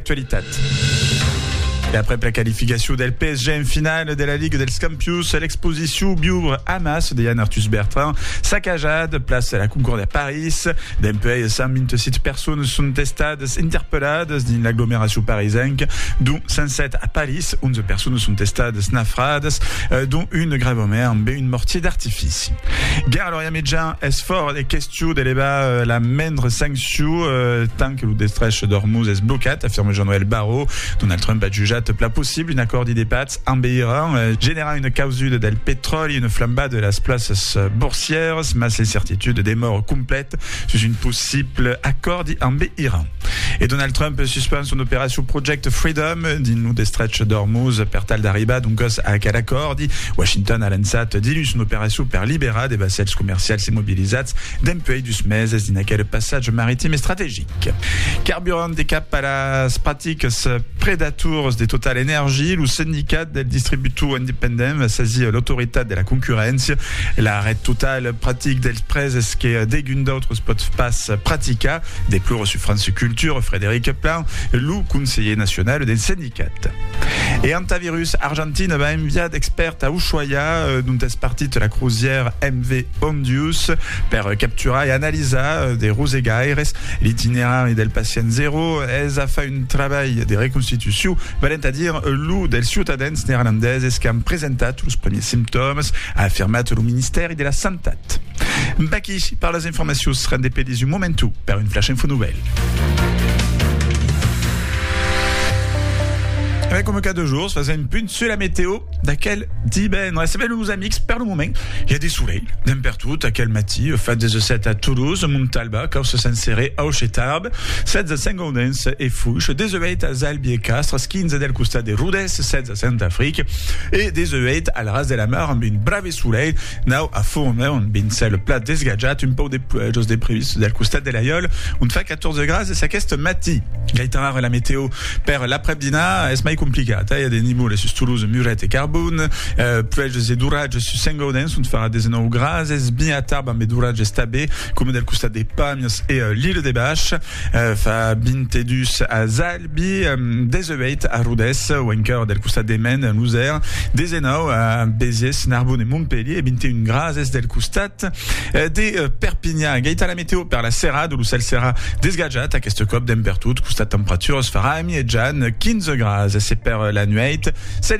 Actualitat. E aprèp la qualificacion del PSG en finala de la Liga dels Campions, l'exposicion Viure a Mas de Yann Arthus Bertrand s'a cajat, plaça la Concorde a París. Dempuèi, 127 personas son estadas interpelladas dins l'aglomeracion parisenca, dont 107 a París. 11 personas son estadas nafradas, dont una gravament ambe un mortier d'artifici. Guerra Lorient-Mitjan es fòra de question. Çò d'eleva la mendre sancciu tant que lo destrech d'Ormuz es blocat, afirme Jean-Noël Barrot. Donald Trump a jutjat pla possible un acòrdi de patz ambe Iran, generar una causuda del petròli, una flambada de las plaças borsièras, mas l'incertitud demòra complèta sus un possible acòrdi ambe Iran. E Donald Trump suspend son operacion Project Freedom dins lo destrech d'Ormuz per tal d'arribar doncas a aquel acòrdi. Washington a lançat diluns son operacion per liberar de vassèls comercials immobilizats dempuèi dus meses dins aquel passatge maritim estrategic. Carburant e cap a las practicas predators de Total Energy, lo Sendicat del Distributor Independent va sasir l'Autoritat de la Concurréncia. L'arrèst total practic dels prèses que degun d'autres pòt pas practicar Deplore sur France Culture Frédéric Plan, lo conselher nacional del sendicat. E Antavirus Argentina va enviar d'expèrts a Ushuaia, dont es partit la crozièra MV Ondius, per capturar e analisar de rosegaires. L'itinerari del pacient zero es a far un trabalh de reconstitucion, valent a dire lo dels ciutadans neerlandeses qu'an presentat los primièrs simptòmas, a afirmat lo ministèri de la Santat. Baquí, parlas Informacions seràn de pedis un momentu per un flash info novèl. Avèm coma cada jorns fas un punt sur la meteo d'aquel divendres. Sabem los amics per lo moment i a de solelh d'en per tot aquel matí fa 17 a Toulouse, Montalba, Caus Sant Seré, Auch e Tarbes, 16 a Sant Gaudens e Fuix, 18 a Zalbi e Castres, 15 del costat de Rodès, 16 a Sant Afric e 18 al Ras de la Mar amb un bravi Solelh nau a Fourmeu, ont ben cèl plat desgatjat, un pauc de pluèjos de previst del costat de l'Aiòl, ont fa 14 grads es aqueste matí. Gaitan ara la meteo per l'aprèp-dinar es mai complicat, i a de nivoles sus Toulouse, Muret e Carbon, pluèjos e d'oratges sus Saint-Gaudens, ont farà 19 grads, es ben a Tarbes ambe d'oratges tanbe, coma del costat de Pàmies e l'Ile-de-Bach, fa 22 a Zall. Bi 18 a Rodés, au encòr del costat de Maine, en Losèr, 19 a Béziers, Narbonne e Montpelhier e 21 grases del costat de Perpinhan. Gaita la meteo per la serada, lo cèl serà desgatjat aqueste còp dempertot, costat temperaturas farà amietjan 15 grases e per la nuèit,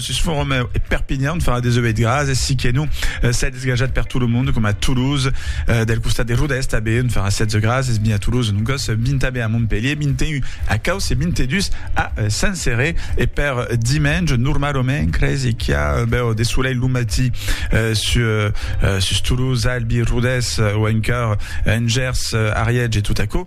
Sus Foromeu e Perpinhan farà 18 graas e siqué non s'es desgajat per tot lo monde coma Toulouse, del costat de Rodèst a Beun farà 16 graas es mi a Toulouse, non còs 20 a Be a Montpelhier, 21 a Causse e 22 a Saint-Céré e per dimenge normalomen cresi qu'i a bèu de solelh lo matí sus Toulouse, Albi, Rodès o encara en Gers, Ariège e tot aquò.